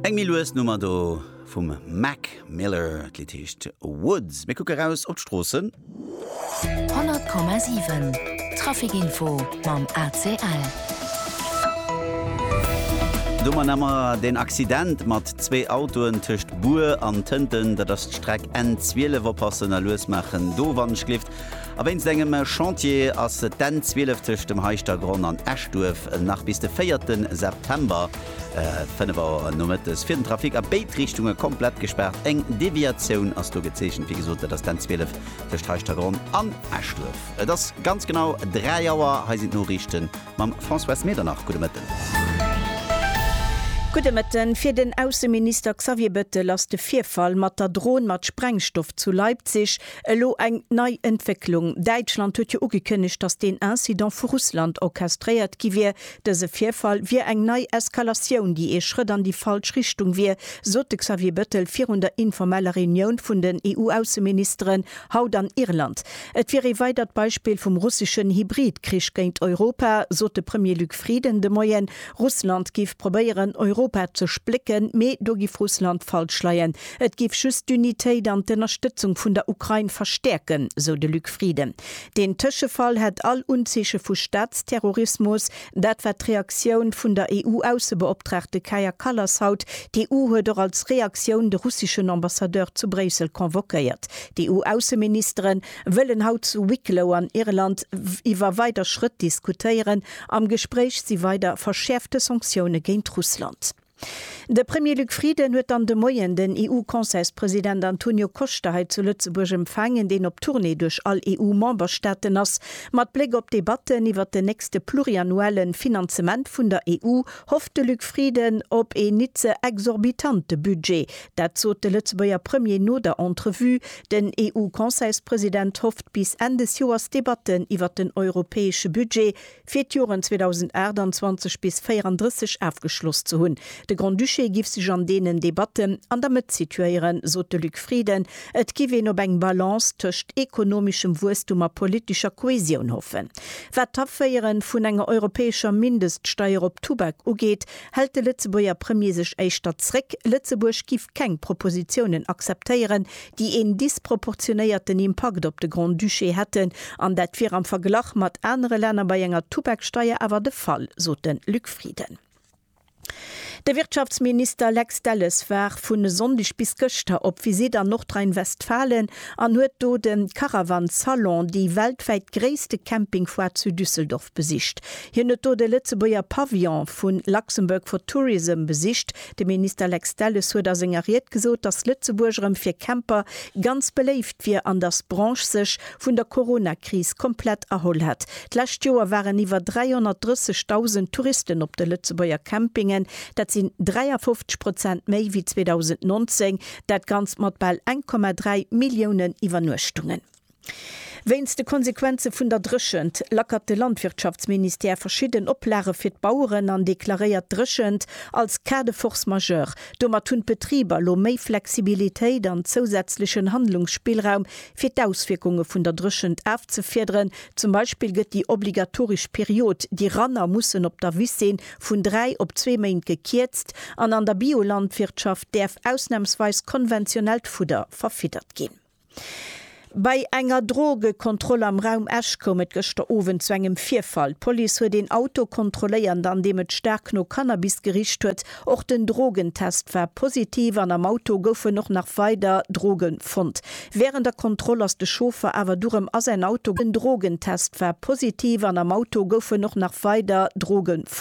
Eng méi lues Nummer do vum Mac Miller. D'Lidd heescht Woods. Mir kucke raus op d'Stroossen. 100,7 Traficinfo mam ACL. Domat hu mer den Accident mat zwee Autoen tëscht Bur an Tënten. Dat ass d'Streck N12. Oppassen a lues maachen do, Wandschlift. A wéinst engem Chantier ass d'N 12 tëscht dem Heischtergronn an Eschduerf nach bis de 4 September, 5 Auer nomëttes, fir den Trafic a béid Richtunge komplett gespaart. Eng Deviatioun ass do gezeechent. Wéi gesot, dat ass d'N 12 tëscht Heischtergronn an Eschduerf. Et ass ganz genau 3 Auer. Hei sinn d'Noriichte mam Françoise Medernach. Gudde Mëtten. Gudde Mëtten. Fir den Ausseminister Xavier Bettel ass de Virfall mat der Dron mat Sprengstoff zu Leipzig Elo eng nei Entwécklung, Däitschland huet jo ugekënnegt, datt deen Incident vu Russland orchestréiert gi wier. Dëse Virfall wier eng nei Eskalatioun, déi ee Schrëtt an déi falsch Richtung wier, sot de Xavier Bettel virun der informeller Reunioun vun den EU-Ausseministeren haut an Irland. Et wier ee weidert Beispill vum russeschen Hybrid-Krich géint Europa, sot de Premier Luc Frieden de Moien. Russland géif probéieren, Europa ze splécken, mee do géif Russland falsch leien, Et géif just d'Unitéit an d'Ënnerstëtzung vun der Ukrain verstäerken, sou de Luc Frieden. Deen Tëschefall hätt all Unzeeche vu Staatsterrorismus. Dat war d'Reaktioun vun der EU-Aussebeoptraagte Kaja Kallas haut. D'EU huet och als Reaktioun de russeschen Ambassadeur zu Bréissel convoquéiert. D'EU-Ausseministere wëllen haut zu Wicklow an Irland iwwer weider Schrëtt diskutéieren. Am Gespréich si weider verschäerfte Sanktioune géint Russland. De Premier Luc Frieden huet dann de Moien den EU-Conseilspresident Antonio Costa hei zu Lëtzebuerg empfaangen, deen op Tournée duerch all EU-Memberstaaten ass. Mat Bléck op d'Debatten iwwert den nächste pluriannuelle Finanzement vun der EU hofft de Luc Frieden op een nit ze exorbitante Budget. Dat sot de Lëtzebuerger Premier no der Entrevue. Den EU-Conseilspresident hofft bis Enn des Joers d'Debatten iwwert den europäesche Budget fir d'Joren 2028 bis 34 afgeschloss ze hunn. De Grand-Duché giff sech an deenen Debatten an der Mëtt situéieren, sot de Luc Frieden. Et giff een op eng Balance tëscht ekonomeschem Wuesstum a politescher Kohäsioun hoffen. Wat d'Aféiere vun enger europäescher Mindeststeier op Tubak ugeet, hält de Lëtzebuerger Premier sech éischter zréck. Lëtzebuerg giff keng Propositiounen akzeptéieren, déi een disproportionéierten Impakt op de Grand-Duché hätten, an dat wier am Verglach mat anere Länner bei enger Tubaksteier awer de Fall, sot de Luc Frieden. De Wirtschaftsminister Lex Delles war vun e Sonndeg bis gëschter op Visitt an Nordrhein-Westfalen an huet do de Caravan Salon, déi weltwäit gréisste Campingfoire zu Düsseldorf, besicht. Hien huet do de Lëtzebuerger Pavillon vu Luxembourg for Tourism besicht, De Minister Lex Delles huet a senger Ried gesot, datt Lëtzebuerg erëm fir Camper ganz beléift wier an datt d'Branche sech vun der Corona-Kris komplett erholl hätt. D'lescht Joer waren iwwer 330.000 Touristen op de Lëtzebuerger Campingen. Dat sinn 53 Prozent méi wéi 2019, dat Ganzt mat bal 1,3 Milliounen Iwwernuechtungen. Wéinst de Konsequenze vun der Dréchent lackert de Landwirtschaftsministère verschidden Oplage fir d'Baueren an deklaréiert d'Dréchent als Cas de force majeure. Domat hunn d'Betriber lo méi Flexibilitéit an zousätzlechen Handlungsspillraum fir d'Auswierkunge vun der Dréchent afzefiederen. Zum Beispill gëtt déi obligatoresch Period, déi Ranner mussen op der Wiss sinn, vun dräi op zwee Méint gekierzt an an der Biolandwirtschaft däerf ausnamsweis konventionellt Fudder verfiddert ginn. Bei enger Drogekontroll am Raum Esch koum et gëschter Owend zu engem Virfall. D'Police huet een Auto kontrolléiert, an deem et staark no Cannabis gericht huet. Och den Drogentest war positiv an am Auto goufen och nach weider Droge fonnt. Wärend der Kontroll ass de Chauffer awer du rëm a säin Auto gaangen. Den Drogentest war positiv an am Auto goufen och nach weider Droge fonnt.